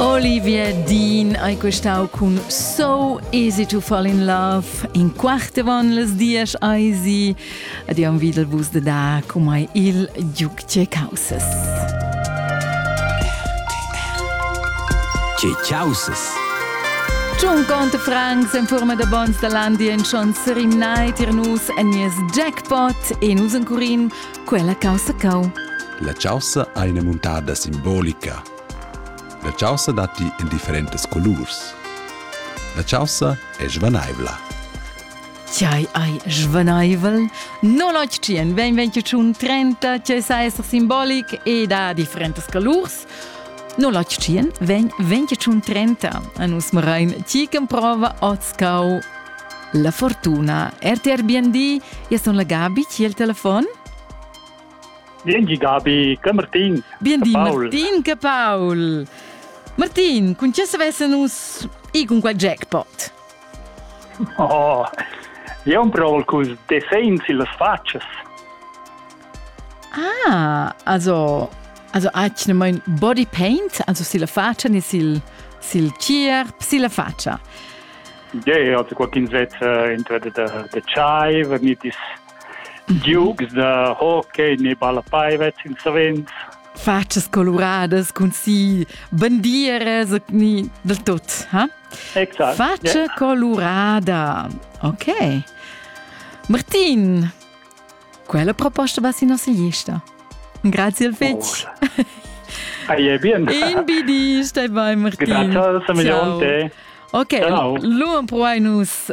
Olivia Dean hai questau cun So Easy to Fall in Love in quarte von les dies eisi ad iam videl vus de da comai il giuc che causes. Ce causes? Giun conte Franks en forma de bons de landi en schon serinai tir nus en nies jackpot e nus en curin quella causa cau. La causa ha ina muntada simbolica La chaussa datti en differentas colurs. La chaussa è svanaivla. Tgei ei svaneivel? Non octien, ben ben che tschun trenta, tgei sa esser simbolic ed ha differentas colurs. Non octien, ven ven che tschun trenta. A nus marain ti che prova otscau la fortuna. RTR BND, io sono la Gabi, chi è il telefono? Biengi Gabi, che Martin. Biendi Martin che Paul. Martin, con chi savesse nus i con quel jackpot? Oh, io un pro col defens illas faccias. Ah, also also ach ne mein body paint, also si la faccia ni sil sil chierp, si la faccia. Ja, yeah, also qualcuno zet entra de de chai, vernit is Giugs da hockey ni ballapei vess ins savens. Fatschas coluradas cun si bandieras ni del tut, ha? Exact. Faccia yeah. colurada. Ok. Martin, quella proposta va si nostra gesta. Grazie al fetch. Oh. Hai è bien. In bidi, stai bei Martin. Grazie, Simeon. Ok, Ciao. lu proai nus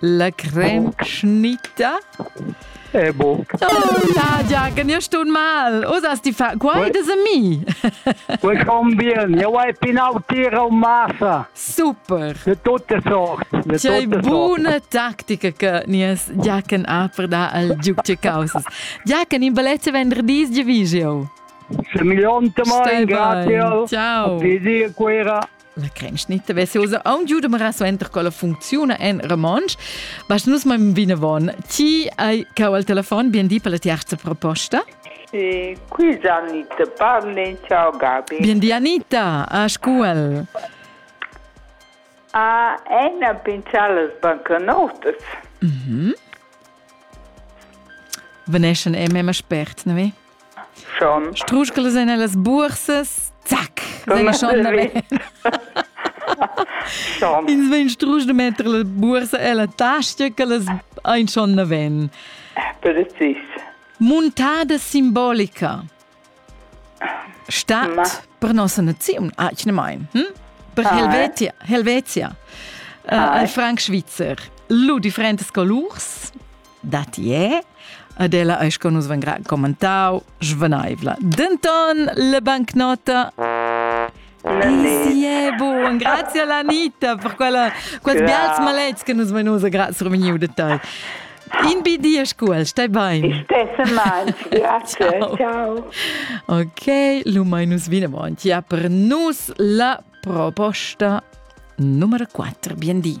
La cremschnita? Eh, boh. Oh, Nadia, che io sto mal. Osas ti fa... Quai des ami. Welcome bien. Io hai pinau tira un massa. Super. De tutte sorti. C'è buona tattica che nies Giachen ha per dar al giuc ce causas. Giachen, in balezza venderdì di visio. Se mi lonte mai, grazie. Ciao. A Fisica. La crens ni vessiosa aun giu de mara suenter con la funcziuna en romontsch. Bast nus ma vinavon. Ti hai cau al telefon bien di per la tiarza proposta. E qui Anita parlen ciao Gabi. Bien di Anita, a scuol. A ena pinchar las bancanotas. Mhm. Veneschen e mema spert, ne? Schon. Struschgeles en las bursas, zac, vegn schon Ins vegn strusch de metter la bursa e la tasta che las ein schon ne ven. Precis. Muntada simbolica. Stadt Ma. per nossa naziun, achne mein. Hm? Per ah. Helvetia, Helvetia. Uh, ah. Al Frank Schweizer. Lu differentes colurs. datti è, ed ella eis con nus vengra commentau svenaivla. Denton le bancnota Sì, buon, grazie Lanita per quella, quels bials malets che nus venusa, grazie Romeniu de tai. In bi di ascul, stai bain. Stesse mal, grazie, ciao. ciao. Ok, lu mai nus vinavon, ja per nus la proposta numero 4. Bien di.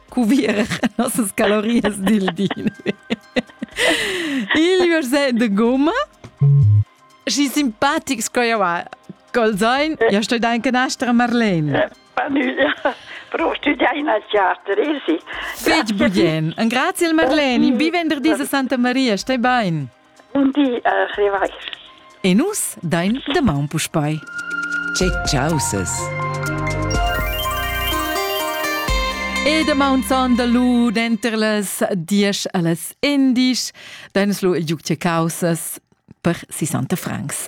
cuvir nossas calorias dil di. Il verset de gomma și simpatic sco eu col zain, eu sto da anche nastra Marlene. Però studiai in teater, sì. Fetg bien. Un grazie Marlene, vi venderdi a Santa Maria, stai bene. Bun di, uh, Levi. E nus dain damaun puspei. Che caussas! E damaun son da lu denter las diesch allas endisch dain lu il giug che caussas per 60 francs.